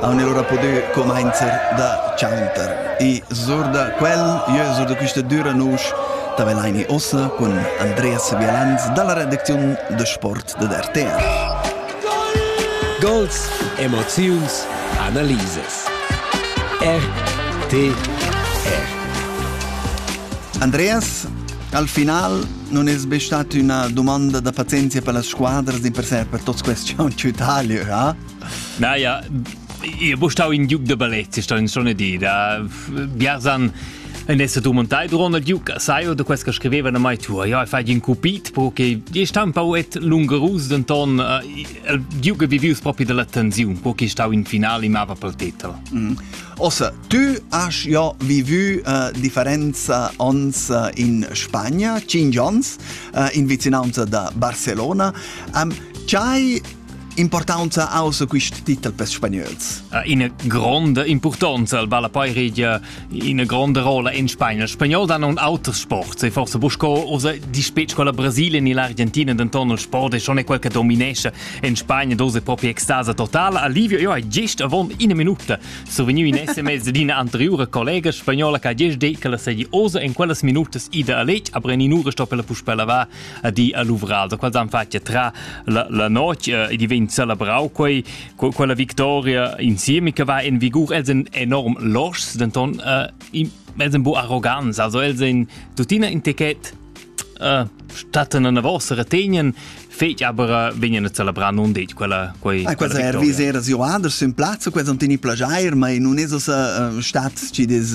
Haun oura pudü cumainzer da chanter. I sur da quel, jeu sur da quista düra nusch, ta velaini ossa cun Andreas Vialanz dalla redacziun da sport dad RTR. Gols, emoziuns, analisas. RTR. Andreas, al final non es be stat üna dumanda da pazienzia per las squadras d'imperser per tots questi aunch'ütaglie, ha? Na ja, Ihr bustau in Duke de Ballet, sta in sonne di, da Biasan en esse tu montai dron al Duke, sai o de quest che scriveva na mai tu, ja fai in cupit, perché e sta un po' et lungerus denton il Duke vivius proprio della tensiun, perché sta in finale mava pel titel. Mm. Ossa, tu has ja vivu uh, differenza ons uh, in Spagna, 5 ans, uh, in vicinanza da Barcelona. Um, C'hai Importanza außer quist titel per spagnols? Ina gronda importanza al balla poi regia ina gronda rolla in Spagna. Spagnol dan un auters sport. Se forse busco osa di specie con la Brasile ni l'Argentina denton il sport è schon è quel che dominesce in Spagna dose proprio extasa totale. Alivio io è gest avon una minuta so veniu in sms di una anteriore collega spagnola che ha gest detto che la sedi osa in quellas minutas ida a letg aber in un'ora sto per la puspella va a di a luvral, da quals han fatg tra la, la notg e diventa celebrau quei, quella victoria insieme che va in vigur, els sind enorm loschs, denton äh, els sind bu arrogants, also els sind tuttina in ticket äh, statten una vostra retegnen fetg aber vegnan a celebrar non detg quella quei ah, quella er viser as jo anders in plazzo quels non tini plagiair ma in un esos stat ci des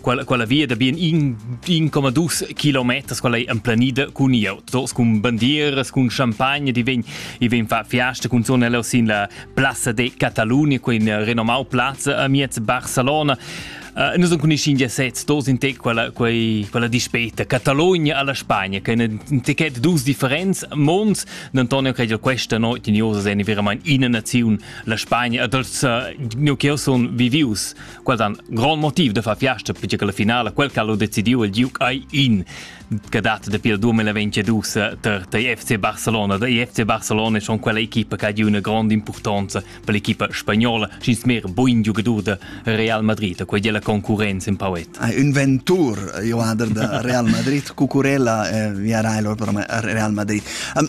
quella, quella via da bien in 1,2 km quella è emplanida cun i autos, cun bandieras, cun champagna, di ven, i ven fa fiasta cun zonella sin la Plaza de Catalunya, quin renomau plaza a miez Barcelona. Uh, noi con i India sez dos in te quella quei quella dispeta Catalogna alla Spagna che in ticket dus differenz monds Antonio credo questa notte in Josa è veramente in nazione la Spagna e dels uh, eh, noi che son vivius Quel dan grond motiv de far fiasta perché che la finale quel che ha decidiu il giuc ai in che data dapi il 2022 ter der FC Barcelona. Der FC Barcelona è schon quella equipa che ha una grande importanza per l'equipa spagnola, schins mehr buin giocador de Real Madrid, quella è la concorrenza in pauet. Ah, inventur, Joader de Real Madrid, cucurella, eh, via Real Madrid. Um,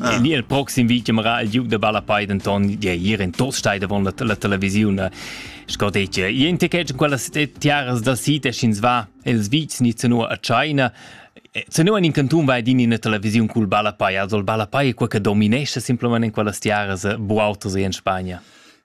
Ah. Di el proxim vi chiamara il giug da Ballapei denton di ir in Tostai davon la, la televisiun sco detg in te che quella tiaras da site sch'ins va els vics ni zeno a China Zeno in canton vai din ina televisiun cul Ballapei, also il Ballapei è quel che dominesce simplement in quellas tiaras buautos in Spagna.